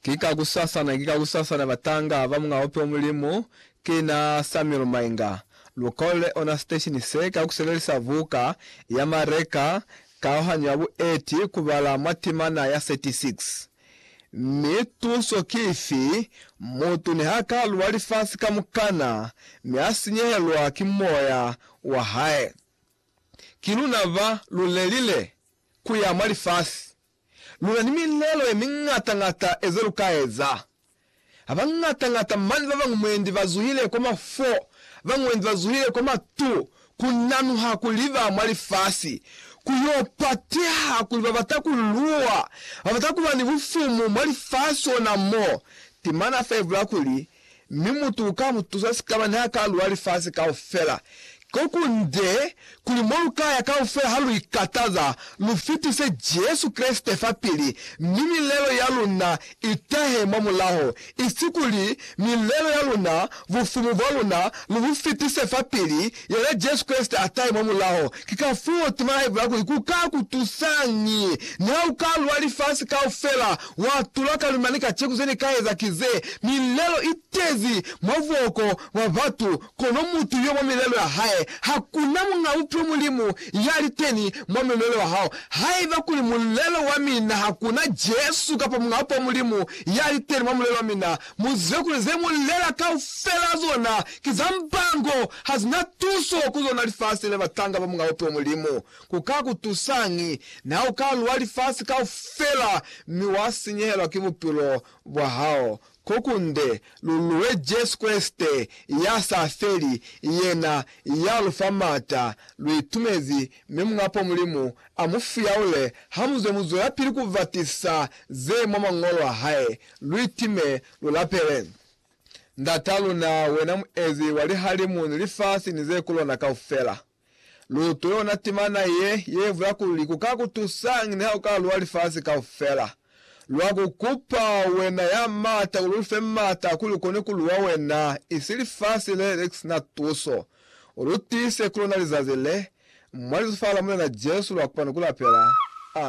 Ki kakusasana, ki kakusasana batanga ba Munga Ope wa Mulimu, ki na Samuel Mainga. Lu kolele ona siteshini se ka ku sebelisa buka ya Mareka Kaohanyo ya Bueti ku bala mwa timana ya 36. Mi tuso ki ifi? Mutu niha ka lwa lifasi kamukana mi a sinyehelwa ki moya wa hae, ki luna ba lu lelile? ku ya mwa lifasi, lu na ni milelo ye miñata-ñata e ze lu ka eza. Ha ba ñata-ñata mane ba bañwi mwendi ba zuhile kwa mafo, ba mwendi ba zuhile kwa matu, ku nanuha kuli ba mwa lifasi. Ku y'o pateha kuli ba bata ku luwa, ba bata ku ba ni bufumu mwa lifasi ona mo. Temana a fevula kuli, Mi mutu uka mu tusa sikaba niha ka luwa lifasi kaufela. Kokunde, kuli mo lu ka ya kaufela ha lu ikataza, lu fitise Jesu Kreste fapili, mi milelo ya luna i tahe mwa mulaho, isi kuli milelo ya luna, bufumu bwa luna, lu bu fitise fapili, Yena Jesu Kreste a tahe mwa mulaho. Ki kafuo tema ya Hae kuli, Ku ka ku tusañi? Niha u ka lwa lifasi kaufela, wa tula ka luli mane kaceku ze ni ka eza ki ze, milelo i tezi mwa buhoko bwa batu, kono mutu yo mwa milelo ya hae, ha ku na muñ'a Bupilo Mulimu ya li teni mwa mulelo wa hao. Haiba kuli mulelo wa mina ha ku na Jesu kapa muñ'a Bupo Mulimu ya li teni mwa mulelo wa mina, Muzwe kuli ze mu lela kaufela zona ki za mbango, ha zina tuso ku zona lifasi le batanga ba Mulao to Mulimu. Ku ka ku tusañi na u ka lwa lifasi kaufela mi wa sinyehelwa ki bupilo bwa hao? Ko kunde, lu lwe Jesu Kreste ya sa feli, yena ya lu fa m'ata. Lu itumezi, mi Mulao Mulimu a mu fuyaule ha muzwe mu zwelapili ku batisa ze mwa Mañolo a hae. Luitime, lulapele. Ndat'a luna, wena muezi wa lihalimu ni lifasi ni ze ku lona kaufela, luutwe yona timana ye, ye bula kuli, Ku ka ku tusañi niha u ka lua lifasi kaufela? Lwa ku kupa, wena ya m'ata, kuli u lu fe m'ata kuli u kone ku lua wena, isi lifasi le le si na tuso. U lu tiise ku lona lizazi le, mwa Lizufa la Mulena Jesu, lwa kopano ku lapela. Amen.